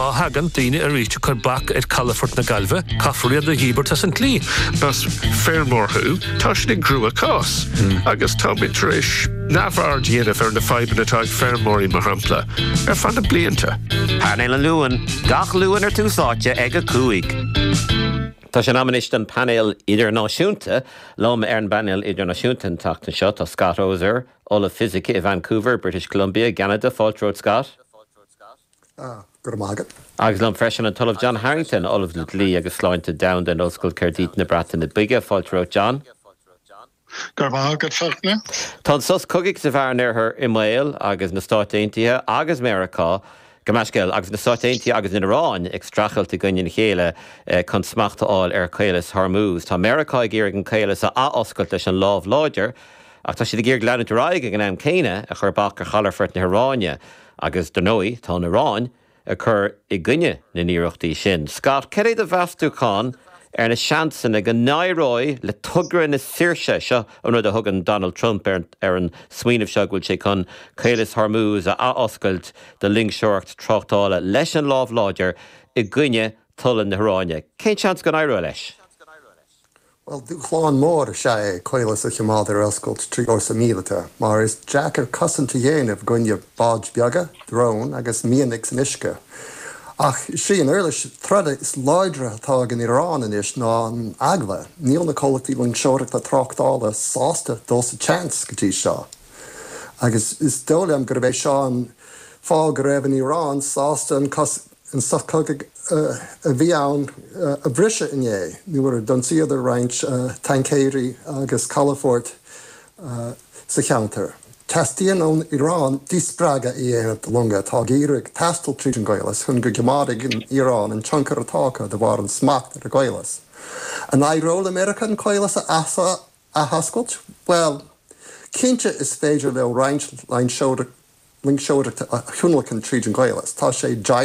Má thagann daoine isteach chun bac a chur ar calafort na Gaillmhe caithfear iad a dhíbirt as an tslí. Más feirmeoir thú, tá sin i gcrua-cás agus táimid tar éis neamhaird a dhéanamh ar na fadhbanna atá ag feirmeoirí, mar shampla, ar feadh na blianta. Painéal an Luain, gach Luan ar Tús Áite ag 5. Tá sé in am anois don Painéal Idirnáisiúnta. Liom ar an bPainéal Idirnáisiúnta an tseachtain seo tá Scott Oser, Ollamh Fisice i Vancouver, British Columbia i gCeanada, fáilte romhat, Scott. Go raibh maith agat. Agus liom freisin an tOllamh John Harrington, Ollamh le Dlí agus Sláinte Domhanda in Ollscoil Caerdydd na Breataine Bige. Fáilte romhat, John. Go raibh maith agat, Fachtna. Tá an sos cogaidh sa Mheán Oirthear i mbaol agus na Stáit Aontaithe agus Meiriceá, gabh mo leithscéal, agus na Stáit Aontaithe agus an Iaráin ag streachailt i gcoinne a chéile chun smacht a fháil ar Chaolas Hormuz. Tá Meiriceá ag iarraidh an caolas a athoscailt leis an lámh láidir, ach tá siad ag iarraidh leanúint ar aghaidh ag an am céanna ag cur bac ar chalafort na hIaráine. Agus dar ndóigh tá an Iaráin ag cur i gcoinne na n-iarrachtaí sin. Scott, cad é do mheastúchán ar na seansanna go n-éireoidh le togra na saoirse, seo an rud a thugann Donald Trump ar an smaoineamh seo go bhfuil sé chun Caolas Hormuz a athoscailt do loingseoireacht tráchtála, leis an lámh láidir i gcoinne tola na hIaráine. Cén seans go n-éireoidh leis? Bhuel, dúshlán mór is ea é an caolas a choimeád ar oscailt trí fhórsa míleata, mar is deacair cosaint a dhéanamh i gcoinne báid bheaga, dróin agus mianaigh san uisce. Ach is í an uirlis troda is láidre atá ag an Iaráin anois ná an eagla. Níl na comhlachtaí loingseoireachta tráchtála sásta dul sa tseans go dtí seo. Agus is dóigh liom gurb é seo an fáth go raibh an Iaráin sásta an an sos cogaidh a bhí ann a bhriseadh inné nuair a d'ionsaíodar roinnt taincéirí agus calafort sa cheantar. Teastaíonn ón Iaráin díspreagadh a dhéanamh do longa atá ag iarraidh taisteal tríd an gCaolas chun go gcoimeádfaidh an Iaráin an tionchar atá acu de bharr an smacht ar an gCaolas. An éireoidh le Meiriceá an Caolas a athoscailt? Bhuel, cinnte is féidir leo roinnt loingseoireachta a thionlacan tríd an gCaolas. Tá sé.